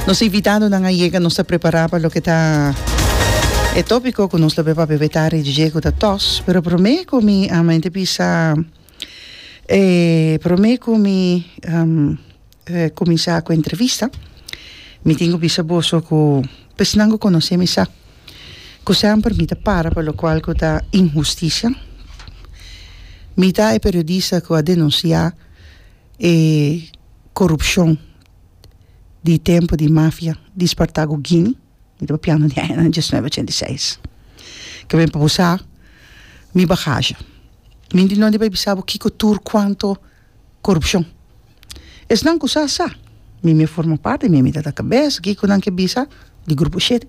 Nos invitadonan a yega, nos ta prepará pa loke ta e tópiko ku nos lo beba bebe tarde di dje ku ta tòs. Pero promé ku mi ama ente bisa e promé ku mi kuminsá ku entrevista mi tin ku bisa boso ku pèsnan ku konosé mi sa ku semper mi ta para pa lokual ku ta inhustisia. Mi ta e periodista ku a denunsiá E korupshon di tempu di mafia di Spartago Gini, mi ta papiando di añanan diesnuebe ochenta i seis, ke mi por bo sa mi bagasha. Mi di nunde bai bisa bo kiko tur kuanto korupshon. Esnan ku sa, sa. Mi mi a forma parti, mi mi tata kabes, kiko nan ke bisa di grupo shete.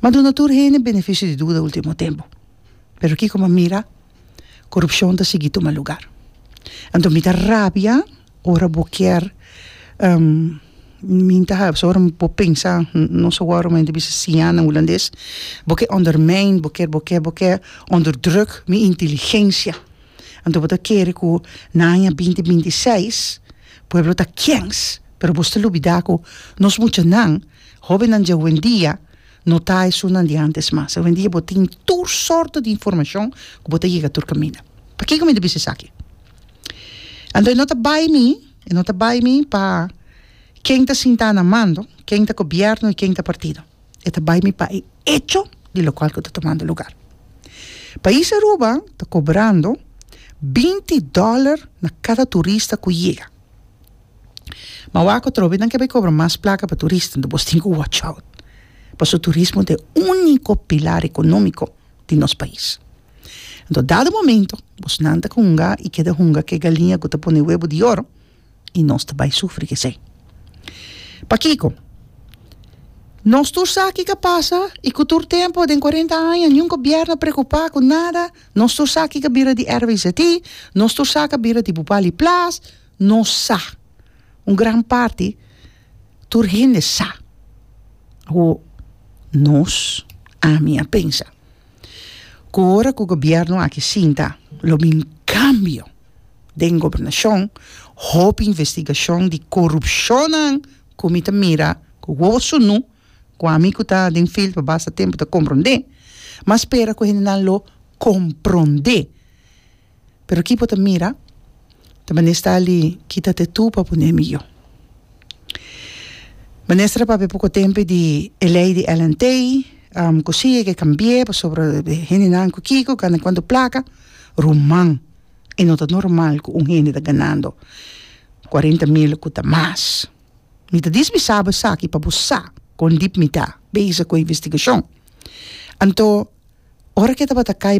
Mi a duna tur hende benefisio di duda ultimo tempu, pero kiko mi a mira. corupcion ta sigui tuma lugar anto mi ta rabia ora bo kier mi ta habi ora bo pensa nos awor mi ta bisa siña nan hulandes bo ke ondermijn bo kier bo kier bo kier onder druk mi inteligencia anto bo ta kere ku na aña binti binti i seis pueblo ta kèns pero bo stil olbida ku nos muchanan hobennan di huendia No ta esunnan di antes mas. Awendia bo tin tur sorto di informashon ku bo ta yega tur kaminda. Pakiko mi ta bisa esaki? Anto e no ta bai mi, e no ta bai mi pa ken ta sintá na mando, ken ta gobièrnu i ken ta partido. E ta bai mi pa e echo di lokual ku ta tomando lugar. Pais Aruba ta kobrando binti dòler na kada turista ku yega. ma wak ku trobe nan ke bai kobra mas plaka pa turista enton bos tin ku watch out paso turismo ta e uniko pilar ekonómiko di nos pais enton dado momento bos nan ta hunga i keda hunga ke galiña ku ta pone webo di oro i nos ta bai sufri kesei pakiko nos tur sa ki ka pasa i ku tur tempo den kuarenta aña niun gobièrnu a preokupa ku nada nos tur sa ki ka bira di RVZT nos tur sa ka bira di Bupali plas. Nos sa, un gran parti, tur hende sa ku nos, ami a pensa ku ora ku gobièrnu aki sinta lo bin kambio den gobernashon, hopi investigashon di korupshonnan ku mi ta mira ku wowo sunu, ku ami ku ta den fild pa basta tempu ta komprondé, mi a spera ku hendenan lo komprondé Pero ki bo ta mira ta mester ali kita te tu pa pone miyó. Minister a papia poko tempe di e lei di LNT ku si e ke kambi'e pasobra hendenan ku kiko gana kuantu plaka, ruman e no ta normal ku un hende ta ganando kuarenta mil ku ta mas. Mi ta dismi saba esaki pa bo sa kon dip mi ta bezig ku e investigashon. Anto ora ke tabata kai